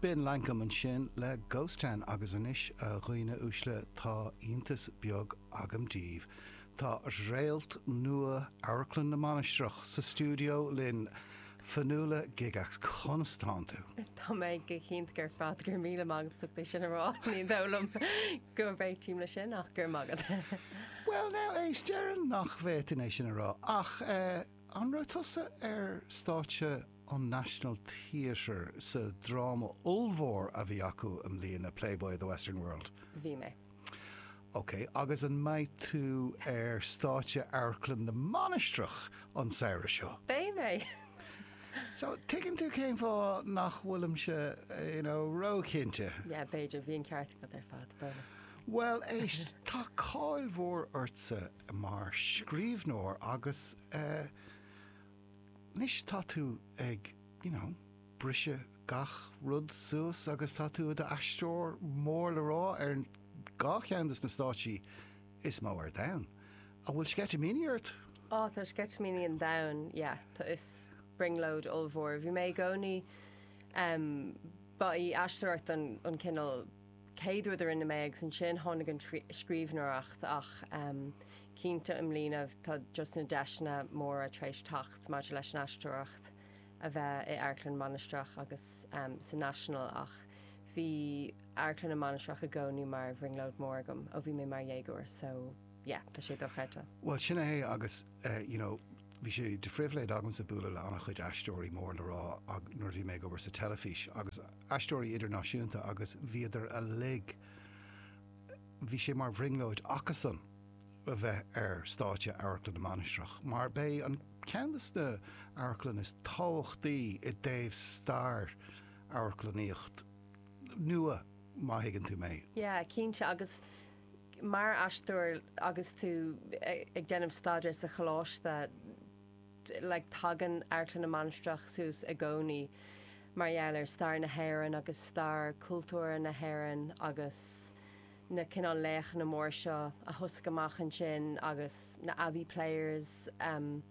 B'in Lankum ansin le Ghost Town agus anois, a dhaoine uaisle, tá iontas beag agam daoibh, tá réalt nua Amharclann na Mainistreach sa stiúideo linn! Fionnuala Gygax, conas tánn tú? Tá mé go hiontach ar fad, go raibh míle maith agat as ucht é sin a rá, ní dóigh liom go réitím leis sin ach go raibh maith agat. Bhuel now, éist, déarfainn nach bhféadfainn é sin a rá ach eh. An raibh tusa ar stáitse an National Theatre sa dráma ollmhór a bhí acu i mbliana, Playboy of the Western World? Bhí mé. Ok, agus an mbeidh tú ar stáitse Amharclann na Mainistreach an samhradh seo? Beidh mé. So, tuigeann tú cén fáth nach bhfuilimse, you know, ró-chinnte. Yeah, b'fhéidir, bhí an ceart agat ar fad, b'fhéidir. Bhuel, tá cáil mhór ortsa mar scríbhneoir agus eh anois tá tú ag you know briseadh gach rud suas agus tá tú i do aisteoir mór le rá ar dhá cheann dos na stáitsí is mó ar domhan. An bhfuil sceitimíní ort? Ó tá sceitimíní an domhain yeah tá is brionglóid ollmhór. Bhí mé i gcónaí em ba í aisteoireacht an an cineál chéad rud a rinne mé agus ansin tháinig an scríbhneoireacht ach cinnte i mbliana tá just na deiseanna móra tar éis teacht maidir leis an aisteoireacht a bheith i Amharclann na Mainistreach agus sa National ach bhí Amharclann na Mainistreach i gcónaí mar bhrionglóid mór agam ó bhí mé mar dhéagóir so yeah tá sé dochreidte. Bhuel sin é agus you know bhí sé de phribhléid agamsa bualadh le an-chuid aisteoirí mór le rá nuair a bhí mé ag obair sa teilifís agus aisteoirí idirnáisiúnta agus bhíodar uilig, bhí sé mar bhrionglóid acusan a bheith ar stáitse Amharclann na Mainistreach mar b'é an ceann dos na amharclann is tábhachtaí i dtaobh stair amharclannaíocht nua má thuigeann tú mé. Yeah, cinnte agus mar aisteoir agus tú ag déanamh staidéir sa choláiste, like tagann Amharclann na Mainistreach suas i gcónaí mar gheall ar stair na hÉireann agus stair chultúrtha na hÉireann agus na cineál laochanna mór seo a thosaigh amach ansin agus na Abbey Players em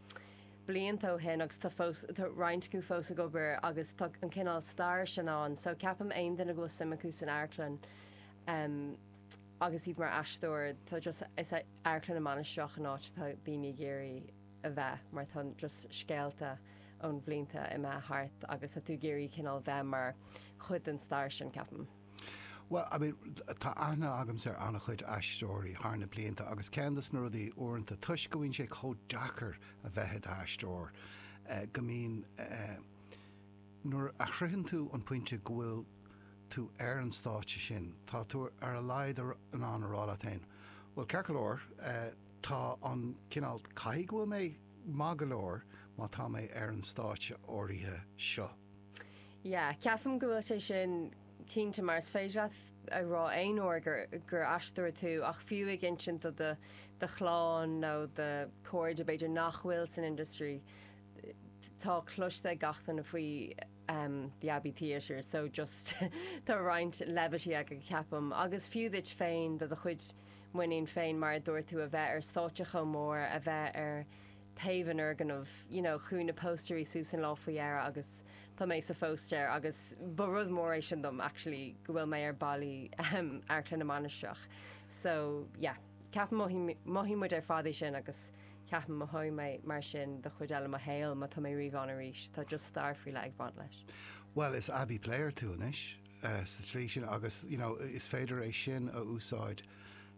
blianta ó shin agus tá fós tá roinnt acu fós ag obair agus tá an cineál stair sin ann so ceapaim aon duine go bhfuil suim acu san amharclann em agus iad mar aisteoir tá just is é Amharclann na Mainistreach an áit atá daoine ag iarraidh a bheith mar tá just scéalta ó na blianta imithe thart agus tá tú ag iarraidh cineál bheith mar chuid den stair sin, ceapaim. Bhuel, I mean, tá aithne agamsa ar an-chuid aisteoirí thar na blianta agus ceann dos na rudaí uaireanta toisc go mbíonn sé chomh deacair a bheith i d'aisteoir go mbíonn eh nuair a shroicheann tú an pointe go bhfuil tú ar an stáitse sin tá tú ar a laghad in ann a rá leat féin bhuel ceart go leor eh Tá cineál caithfidh go bhfuil mé maith go leor má tá mé ar an stáitse áirithe seo. Yeah, ceapaim go bhfuil sé sin cinnte mar is féidir leat a rá aon uair gur, gur aisteoir tú ach fiú ag insint do, do chlann nó do chairde b'fhéidir nach bhfuil san industry, tá cloiste ag gach duine faoi ehm the Abbey Theatre so just tá roinnt levity agat ceapaim agus fiú duit féin do do chuid muinín féin mar a dúirt tú a bheith ar stáitse chomh mór, a bheith ar taobh an fhoirgnimh, you know chuaigh na póstaerí suas an lá faoi dheireadh agus tá mé sa phóstaer agus ba rud mór é sin dom actually go bhfuil mé ar ballaí ehm Amharclann na Mainistreach so yeah ceapaim mothaím, mothaíonn muid ar fad é sin agus ceapaim mothóidh mé mar sin don chuid eile de mo shaoil má tá mé riamh ann arís, tá just stair faoi leith ag baint leis. Bhuel, is Abbey player tú anois. sa tslí sin agus you know is féidir é sin a úsáid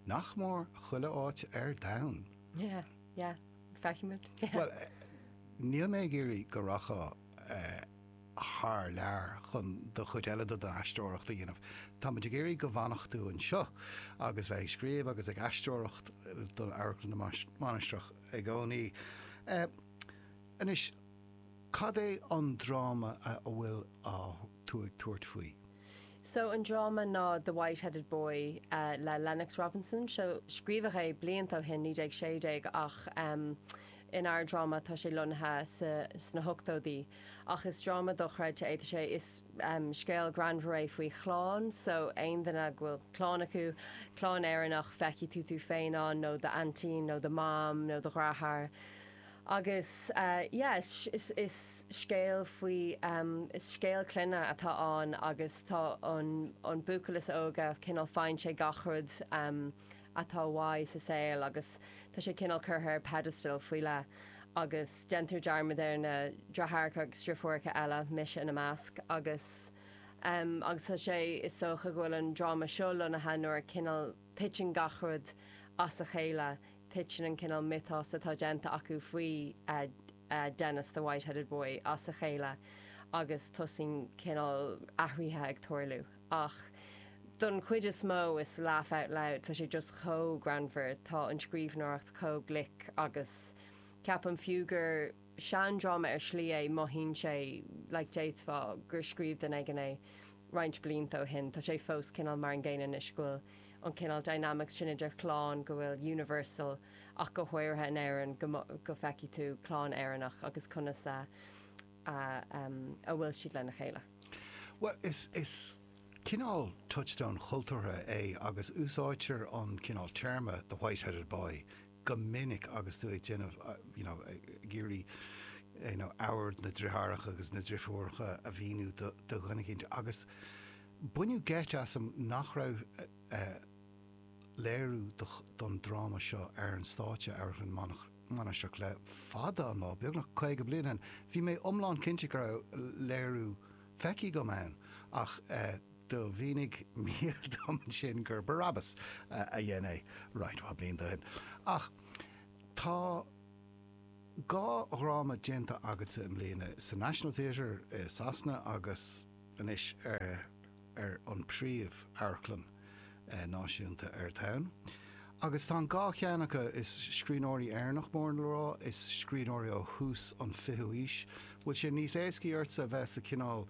nach mór chuile áit ar domhan. Yeah, yeah. Feicimid. Bhuel, níl mé ag iarraidh go rachfá thar lear chun do chuid eile den aisteoireacht a dhéanamh. Táimid ag iarraidh go bhfanfadh tú anseo agus bheith ag scríobh agus ag aisteoireacht d'Amharclann na Mainistreach i gcónaí. Anois, cad é an dráma a bhfuil á. tú ag tabhairt faoi. So an dráma ná The White Headed Boy le Lennox Robinson. So, scríobhadh é blianta ó shin, 1916, ach inár dráma tá sé lonnaithe sna hochtóidí. Ach is dráma dochreidte é. Tá sé, is scéal greannmhar é faoi chlann. So aon duine go bhfuil clann acu, clann Éireannach, feicfidh tú tú féin ann, nó do aintín, nó do mom, nó do dheartháir. Agus yeah, is scéal faoi, is scéal clainne atá ann agus tá an buachaill is óige cineál faigheann sé gach rud atá uaidh sa saol agus tá sé cineál curtha ar pedestal faoi leith agus déantar dearmad ar na deartháireacha agus deirfiúracha eile, mise ina measc agus agus tá sé, is dócha go bhfuil an dráma seo lonnaithe nuair a cineál titeann gach rud as a chéile Tuiteann an cineál mythos atá déanta acu faoi Dennis the White Headed Boy as a chéile agus tosaíonn cineál athraithe ag tarlú. Ach don chuid is mó it's laugh out loud, tá sé just chomh greannmhar, tá an scríobhneoireacht chomh glic agus ceapaim fiú gur seandráma ar shlí é, mothaíonn sé like déarfá gur scríobh duine éigin é roinnt blianta ó shin, tá sé fós cineál mar an gcéanna anois go bhfuil. an cineál dynamics sin idir chlann go bhfuil universal ach go háirithe in Éirinn go go feicfidh tú clann Éireannach agus conas a a bhfuil siad lena chéile. Bhuel is cineál touchstone chultúrtha é agus úsáidtear an cineál téarma the white-headed boy go minic agus tú ag déanamh you know ag iarraidh you know ábhar na deartháireacha agus na deirfiúracha a mhíniú do dhuine éicint agus Baineadh geit asam nach raibh léiriú don dráma seo ar stáitse Amharclann na Mainistreach le fada an lá, beagnach 50 bliain ó shin. Bhí mé iomlán cinnte go raibh léiriú feicthe agam ann ach do mhínigh Mícheál dom ansin gur Barabbas a dhein é roinnt mhaith blianta ó shin. Ach tá dhá dhráma déanta agatsa i mbliana, sa National Theatre i Sasana agus. anois ar ar an príomh amharclann náisiúnta ar domhan agus tá an dá cheann acu is scríbhneoirí Éireannacha mór le rá, is scríbhneoirí ó thús an fichiú aois, bhfuil sé níos éascaí ortsa a bheith sa cineál,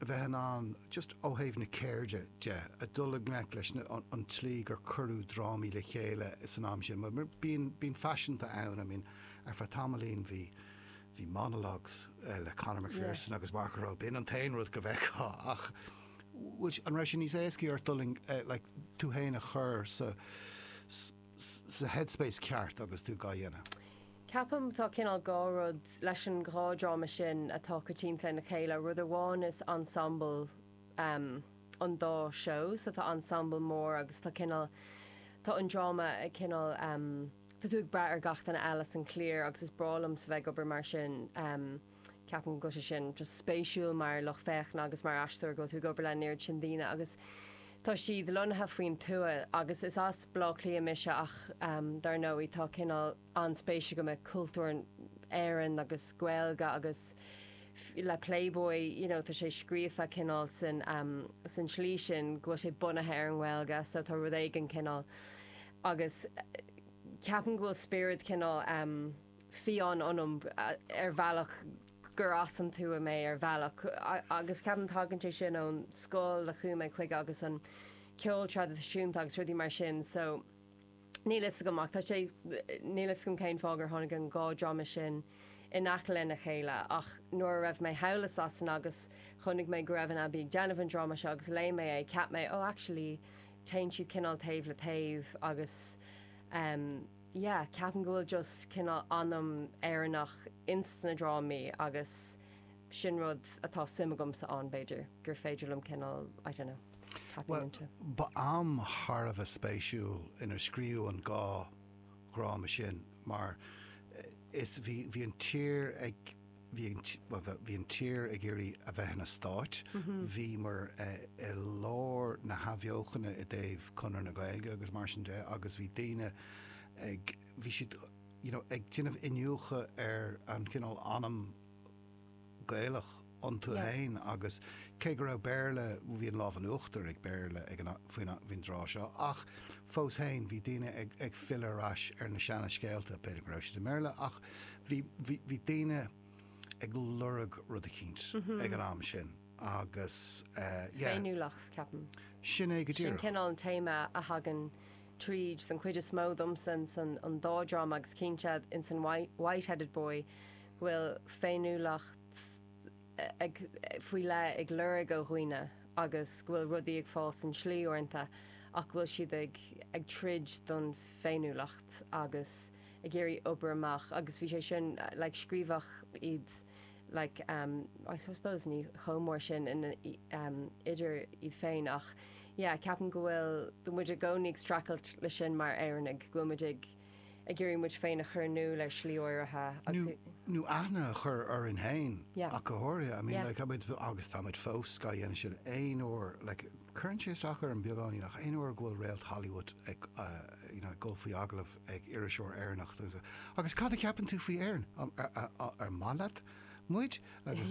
a bheith in ann, just ó thaobh na ceirde de, a dhul i ngleic leis na, an tslí gur cuireadh drámaí le chéile san am sin, bhuel bíonn, bíonn faisin ann, I mean ar feadh tamaillín bhí, Bhí monologues le Conor McPherson agus Mark O'Rowe, b'in an t-aon rud go bhfeicfeá ach an raibh sé níos éascaí ort dul like tú fhéin a chur sa sa headspace ceart agus tú gá dhéanamh? Ceapaim tá cineál dhá rud leis an dá dhráma sin atá coitianta lena chéile, rud amháin is ensemble ehm an dá show so tá ensemble mór agus tá cineál tá an dráma cineál ehm, Tá tú ag brath ar gach duine eile san cliar agus is breá liomsa a bheith ag obair mar sin. Ceapaim go bhfuil sé sin just spéisiúl mar lucht féachana agus mar aisteoir go bhfuil tú ag obair leis an oiread sin daoine agus tá siad lonnaithe faoin tuath agus is as Baile Átha Cliath mise ach dár ndóigh tá cineál an-spéis agam i gcultúr Éireann agus Gaeilge agus le Playboy you know tá sé scríofa cineál san tslí sin go bhfuil sé bunaithe ar an nGaeilge so tá rud éigin cineál agus ceapaim go bhfuil spiorad cineál fiáin ionam ar bhealach gur as an tuath mé ar bhealach agus ceapaim tagann sé sin ón scoil a chuaigh mé chuige agus an ceol traidisiúnta agus rudaí mar sin so níl fhios agam ach tá sé níl fhios agam cén fáth gur tháinig an dhá dhráma sin in aice le na chéile ach nuair a raibh mé thall i Sasana agus chonaic mé go raibh an Abbey ag déanamh an dráma seo agus léigh mé é ceap mé oh actually téann siad cineál taobh le taobh agus yeah ceapaim go bhfuil just cineál anam Éireannach ins na drámaí agus sin rud atá suim agamsa ann b'fhéidir gur féidir liom cineál I don't know tapping Bhuel, into. ba am thar a bheith spéisiúil inar scríobhadh an dhá dhráma sin mar is bhí, bhí an tír ag, bhí an tír ag iarraidh a bheith ina stáit, bhíomar i lár na hathbheochana i dtaobh Conradh na Gaeilge agus mar sin de agus bhí daoine ag, bhí siad you know ag déanamh iniúchadh ar an chineál anam Gaelach iontu fhéin agus cé go raibh Béarla, bhí an lámh in uachtar ag Béarla ag an, faoin, faoin dtráth seo ach fós fhéin bhí daoine ag filleadh ar ais ar na seana scéalta, b'fhéidir go raibh siad i mBéarla ach. Bhí, bhí, bhí daoine ag lorg rud eicínt ag an am sin agus eh, yeah. Féiniúlacht ceapaim. Sin é go Sin díreach. cineál an téama a thagann tríd don chuid is mó domsa ins an an dá dráma agus cinnte ins an White, Whiteheaded Boy go bhfuil féiniúlacht eh, ag, faoi leith ag lorg ó dhaoine agus go bhfuil rudaí ag fáil sa tslí uaireanta ach go bhfuil siad ag, ag troid don féiniúlacht agus. ag iarraidh obair amach agus bhí sé sin like scríobhadh iad like em I suppose ní chomh mór sin in em idir iad féin ach yeah ceapaim go bhfuil go muid i gcónaí ag streachailt leis sin mar Éireannaigh go bhfuil muid ag ag iarraidh muid féin a chur in iúl ar shlí áirithe nó agus i nó aithne a chur orainn féin yeah ach go háirithe I mean yeah like tá muid agus tá muid fós á dhéanamh sin aon uair like cuireann sé isteach orm beagáinín ach aon uair go bhfuil réalt Hollywood ag uh you know ag dul faoi agallamh ag iriseoir Éireannach dúnsa, Agus cad a cheapann tú faoi Éirinn? An maith leat muid? Agus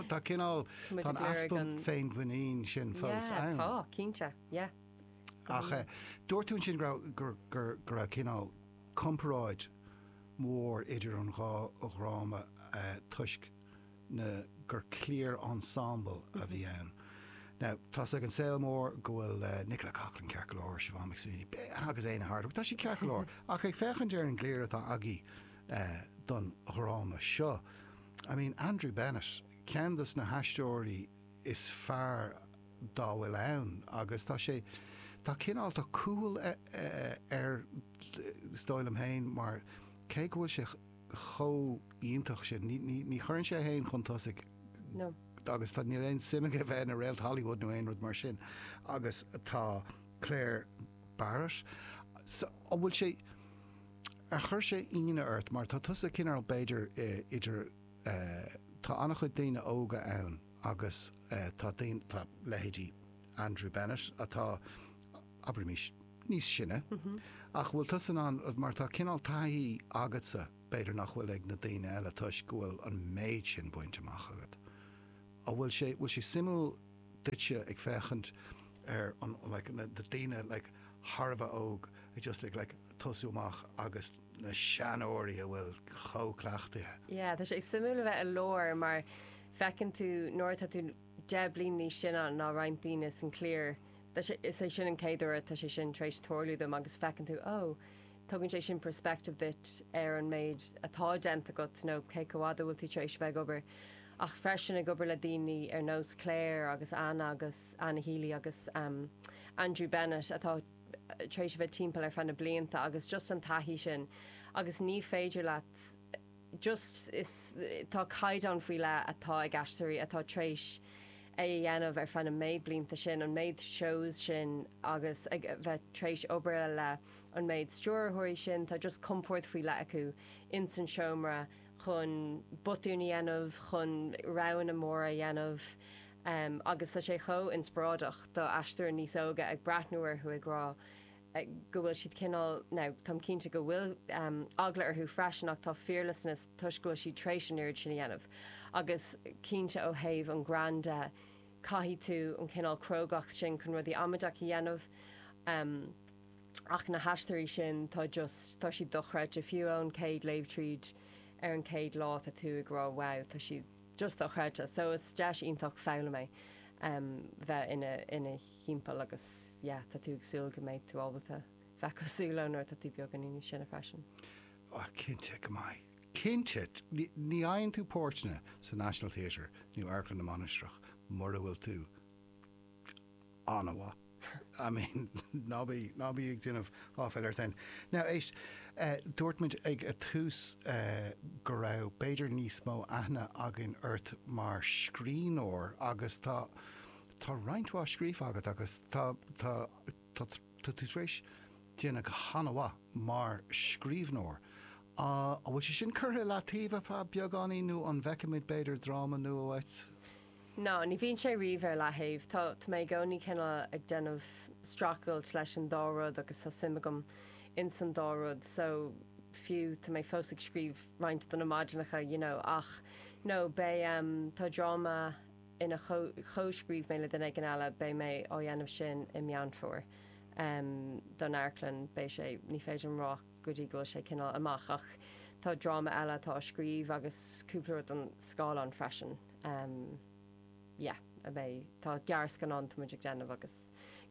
tá cineál, tá an easpa féinmhuiníne sin fós ann. Tá, cinnte, yeah. Ach dúirt tú ansin go raibh cineál comparáid mhór idir an dhá dhráma toisc. ná gur cliar ensemble a bhí ann. Now, tá's ag an saol mór go bhfuil Nicola Coughlan ceart go leor, Siobhán McSweeney, b'fhéidir, agus Éanna Hardwicke, but tá sé ceart go leor. Ach ag féachaint ar an gcliar atá agaibh don dráma seo, I mean, Andrew Bennett, ceann des na haisteoirí is fearr dá bhfuil ann agus tá sé, tá cineál, tá cúthail, is dóigh liom fhéin, mar cé go bhfuil sé, chomh iontach sin. Ní, ní, ní chuireann sé é féin chun tosaigh. No. Agus tá, níl aon suim aige bheith ina réalt Hollywood nó aon rud mar sin. Agus tá Clare Barrett, so, an bhfuil sé, ar chuir sé ionadh ort mar tá tusa cineál b'fhéidir idir eh, tá an-chuid daoine óga ann agus eh, tá daoine, tá leithéidí Andrew Bennett atá, abraimís, níos sine, ach bhfuil tusa in ann, mar tá cineál taithí agatsa, b'fhéidir nach bhfuil ag na daoine eile toisc go bhfuil an méid sin bainte amach agat. An bhfuil sé, bhfuil sé suimiúil duitse ag féachaint ar an like na daoine like thar a bheith óg ag just ag like tosú amach agus na seanóirí atá chomh cleachtaithe, Yeah, tá sé suimiúil a bheith i lár mar feiceann tú nuair atá tú deich bliain níos sine ná roinnt daoine san cliar, Tá sé, is é sin an chéad uair atá sé sin tar éis tarlú dom agus feiceann tú, ó, tugann sé sin perspective duit ar an méid atá déanta agat nó cé chomh fhada a bhfuil tú tar éis bheith ag obair ach freisin ag obair le daoine ar nós Clare agus Anna agus Anna Healy agus Andrew Bennett atá tar éis a bheith timpeall ar feadh na blianta agus just an taithí sin agus ní féidir leat just tá caighdeán faoi leith atá ag aisteoirí atá tréis é a dhéanamh ar feadh na méid blianta sin, an méid shows sin agus ag bheith tréis obair le an méid stiúrthóirí sin, tá just compord faoi leith acu ins an seomra chun botúin a dhéanamh, chun roghanna móra a dhéanamh agus tá sé chomh inspioráideach do aisteoir níos óga ag breathnú orthu ag rá. go bhfuil siad cineál, now, táim cinnte go bhfuil eagla orthu freisin ach tá fearlessness toisc go bhfuil siad tar éis an oiread sin a dhéanamh agus cinnte ó thaobh an greann de caithfidh tú an cineál crógacht sin chun rudaí amaideach a dhéanamh ach na haisteoirí sin tá just, tá siad dochreidte fiú ón chéad léamh tríd ar an chéad lá tá tú ag rá wow tá siad just dochreidte so is deis iontach foghlama é bheith in a thimpeall agus yeah tá tú ag súil go mbeidh tú ábalta bheith cosúil leo nuair atá tú beagáinín níos sine freisin. Oh cinnte go mbeidh. Cinnte. Ní fhaigheann tú páirteanna sa National Theatre nó Amharclann na Mainistreach mura bhfuil tú an-mhaith. I mean ná bí, ná bí ag déanamh áiféil ort fhéin. Now éist, dúirt muid ag an tús go raibh b'fhéidir níos mó aithne againn ort mar scríbhneoir agus tá, Tá roinnt mhaith scríofa agat agus tá tá tá tá tú tar éis déanamh go han-mhaith mar scríbhneoir. An bhfuil sé sin curtha i leataobh ar feadh beagáinín nó an bhfeicfimid b'fhéidir dráma nua uait? Ná ní bhíonn sé riamh ar leataobh. Tá tá mé i gcónaí cineál ag déanamh stracailt leis an dá rud agus tá suim agam in san dá rud so fiú tá mé fós ag scríobh roinnt do na maidineacha you know ach no beidh em tá dráma ann a chomhscríobh mé le duine éigin eile, beidh mé á dhéanamh sin i Meán Fómhair don amharclann, beidh sé, ní féidir liom rá go dtí go bhfuil sé cineál amach ach tá dráma eile atá á scríobh agus cúpla rud don scáileán freisin, yeah, a mbeidh, tá gearrscannán tá muid ag déanamh agus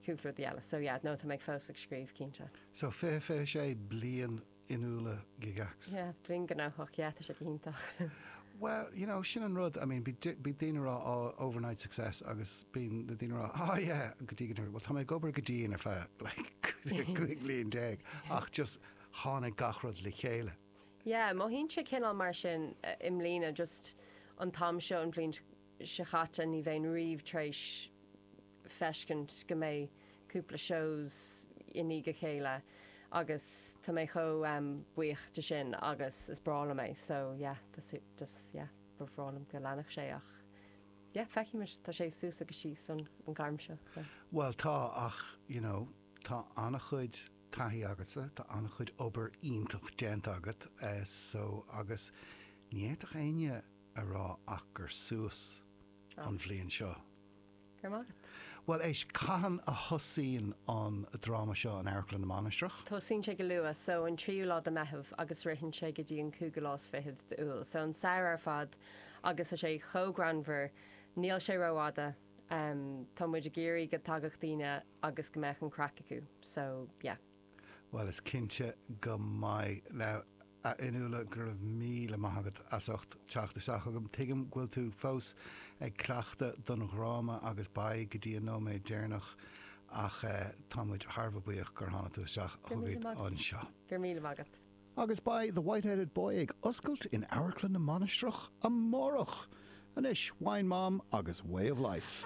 cúpla rudaí eile, so yeah, no, tá mé fós ag scríobh, cinnte. So fiche, fiche sé bliain in úll na gigs. Yeah, bliain ghnóthach, yeah, tá sé go hiontach. Well, you know, sin an rud, I mean, bíonn daoine ag rá oh, overnight success agus bíonn na daoine ag rá oh yeah, go dtí go dtí, well, tá mé ag obair go dian ar feadh like 15 bliain ach just tháinig gach rud le chéile. Yeah, mothaíonn sé cineál mar sin i mbliana, just an t-am seo an bhliain seo chaite ní bheinn riamh tar éis feiscint go mbeadh cúpla shows i ndiaidh a chéile agus tá mé chomh buíoch de sin agus is breá liom é so yeah just yeah ba bhreá liom go leanfadh sé ach yeah feicfimid tá sé suas agus síos sa ghairm seo so. Bhuel tá ach you know tá an-chuid taithí agatsa, tá an-chuid obair iontach déanta agat so agus ní fhéadfadh éinne a rá ach gur suas an bhliain seo. Bhuel, éist, cathain a thosaíonn an dráma seo in Amharclann na Mainistreach? Tosaíonn sé go luath, so an tríú lá de Meitheamh agus ritheann sé go dtí an cúigiú lá is fiche d'Iúil. So an samhradh ar fad agus tá sé chomh greannmhar, níl sé rófhada, tá muid ag iarraidh go dtagadh daoine agus go mbeadh an craic acu, so yeah. Bhuel, is cinnte go mbeidh. Now, a Fhionnuala, go raibh míle maith agat as ucht teacht isteach chugam. Tuigim go bhfuil tú fós ag cleachtadh don dráma agus beidh go dtí an nóiméad deireanach ach tá muid thar a bheith buíoch gur tháinig tú isteach chugainn anseo. Go raibh míle maith agat. Agus beidh The White-Headed Boy ag oscailt in Amharclann na Mainistreach amárach! Anois, Wine Mom agus Way of Life.